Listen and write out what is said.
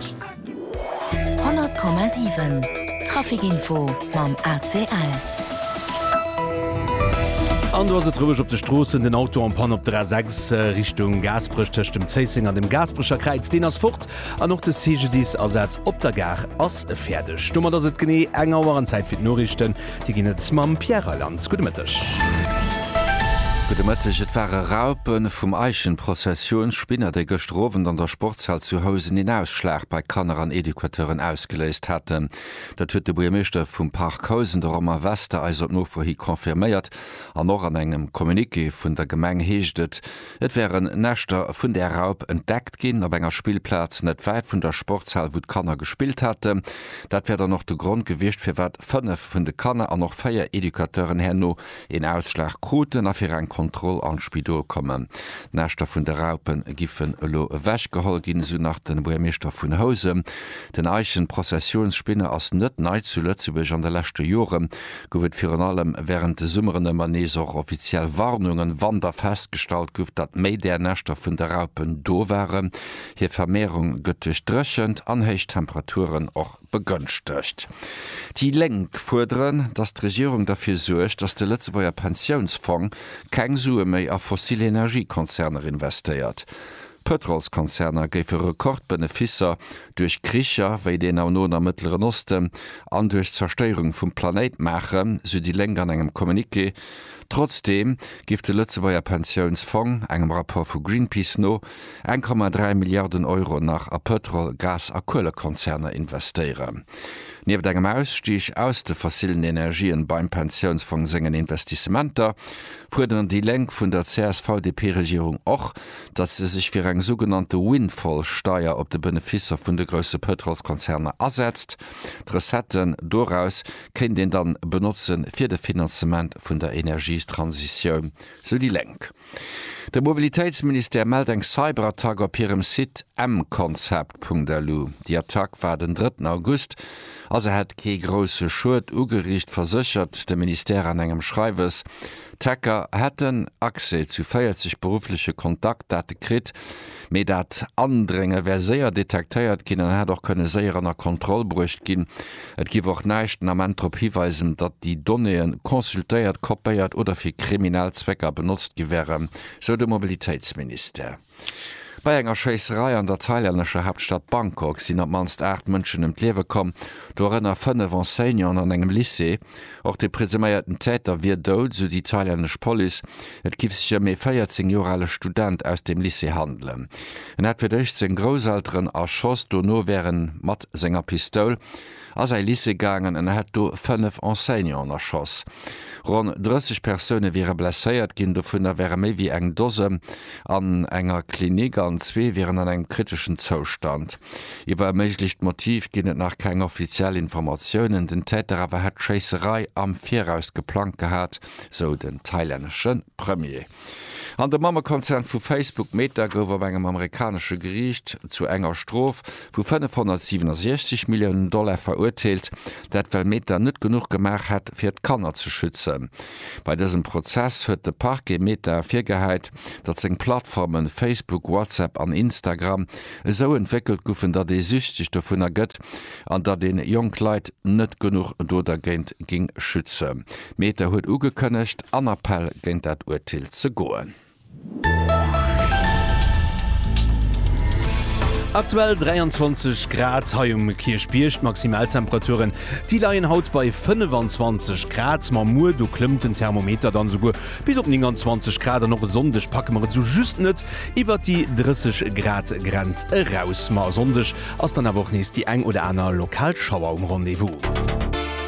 100,7 Traficinfo mam ACL. An do ass et roueg op de Stroossen. Den Auto en Panne op der A6 Richtung Gaasperech tëscht dem Zéisseng an dem Gaasperecher Kräiz, deen ass fort. An och de CGDIS-Asaz op der Gare ass fäerdeg. Domat ass et genee eng Auer an Zäit fir d'Noriichten. Dir ginn et mam Pierre Reyland. Gudde Mëtteg. Gudde Mëtteg. Et ware Raupe vum Eichenprozessionsspinner, déi gëschter Owend an der Sportshal zu Housen een Ausschlag bei Kanner an Educateuren ausgeléist haten. Dat huet de Buergermeeschter vum Parc Housen, de Romain Wester, eis op Nofro hi confirméiert. An och an engem Communiqué vun der Gemeng heescht et, Et wären Näschter vun där Raup entdeckt ginn, op enger Spillplaz net wäit vun der Sportshal, wou d'Kanner gespillt haten. Dat wär dann och de Grond gewiescht, firwat fënnef vun de Kanner an och véier Educateuren herno een Ausschlag kruten a fir eng Kontroll an d'Spidol kommen. D'Näschter vun de Raupe giffen elo ewechgeholl ginn, esou nach de Buergermeeschter vun Housen. Den Eichenprozessionsspinne ass net nei zu Lëtzebuerg. An de leschte Jore gouf et virun allem wärend de Summeren ëmmer nees och offiziell Warnungen, wann da festgestallt gouf, datt méi där Näschter vun de Raupen do waren. Hir Vermehrung gëtt duerch d'Dréchent an héich Temperaturen och begënschtegt. Déi Lénk fuerderen, datt d'Regierung derfir suergt, datt de Lëtzebuerger Pensiounsfong keng Sue méi a fossil Energiekonzerner investéiert. Pëtrolskonzerner géife Rekordbeneficer duerch Kricher wéi deen am Noen a Mëttleren Osten an duerch d'Zerstéierung vum Planéit maachen, sou déi Lénk an engem Communiqué. Trotzdeem géif de Lëtzebuerger Pensiounsfong, engem Rapport vu Greenpeace no, 1,3 Milliarden Euro nach a Pëtrol-, Gas a Kuelekonzerner investéieren. Nieft engem Ausstig aus de fossillen Energien beim Pensiounsfong sengen Investissementer, fuerderen déi Lénk vun der CSV-DP-Regierung och, datt se sech fir eng sougenannte Windfall-Steier op de Beneficer vun de grousse Pëtrolskonzerner asetzt. D'Recetten doraus kéint een dann benotze fir de Finanzement vun der Energietransitioun, sou déi Lénk. De Mobilitéitsministère mellt eng Cyberattack op hirem Site mconcept.lu. Déi Attack war den drëtten August a se hätt kee grousse Schued ugeriicht, verséchert de Ministère an engem Schreiwes. D'Hacker hätten Accès zu 40 beruffleche Kontaktdate kritt, mee dat Andrénge wär séier detektéiert ginn an hätt och kënne séier ënner Kontroll bruecht ginn. Et géif och näischt den Ament drop hiweisen, datt déi Donnéeë consultéiert, kopéiert oder fir kriminell Zwécker benotzt gi wären, sou de Mobilitéitsministère. Bei enger Schéisserei an der thailännescher Haaptstad Bangkok sinn op d'mannst 8 Mënschen ëm d'Liewe komm, dorënner 5 Enseignanten an engem Lycée. Och de presuméierten Täter wier dout, esou déi thailännesch Police. Et giff sech ëm ee 14 Joer ale Student aus dem Lycée handelen. En hätt fir d'éischt seng Grousselteren erschoss, dono wär en mat senger Pistoul a säi Lycée gaangen an hätt do fënnef Enseignanten erschoss. Ronn 30 Persoune wiere blesséiert ginn, dovunner wäre méi wéi eng Dose an enger Klinik an zwee wieren an engem kriteschen Zoustand. Iwwer e méiglecht Motiv ginn et nach keng offiziell Informatiounen, den Täter awer hätt d'Schéisserei am Viraus geplangt gehat, sou den thailännesche Premier. An de Mammekonzern vu Facebook, Meta, gouf op engem amerikanesche Geriicht zu enger Strof vu 567 Milliounen Dollar verurteelt, dat well Meta net genuch gemaach hätt, fir d'Kanner ze schützen. Bei dësem Prozess huet de Parquet Meta virgehäit, datt seng Plattforme Facebook, WhatsApp an Instagram esou entwéckelt guffen, datt ee süchteg dovunner gëtt an datt een jonk Leit net genuch do dergéint géing schützen. Meta huet ugekënnegt, an Appell géint dat Urteel ze goen. Aktuell 23 Grad hei um Kierchbierg. D'Maximaltemperaturen, déi leien haut bei 25 Grad. Ma muer, do klëmmt den Thermometer dann esouguer bis op 29 Grad an och e Sonndeg packe mer et esou just net iwwert déi 30 Grad Grenz eraus. Ma e Sonndeg ass dann awer och nees déi eng oder aner lokal Schauer um Rendez-vous.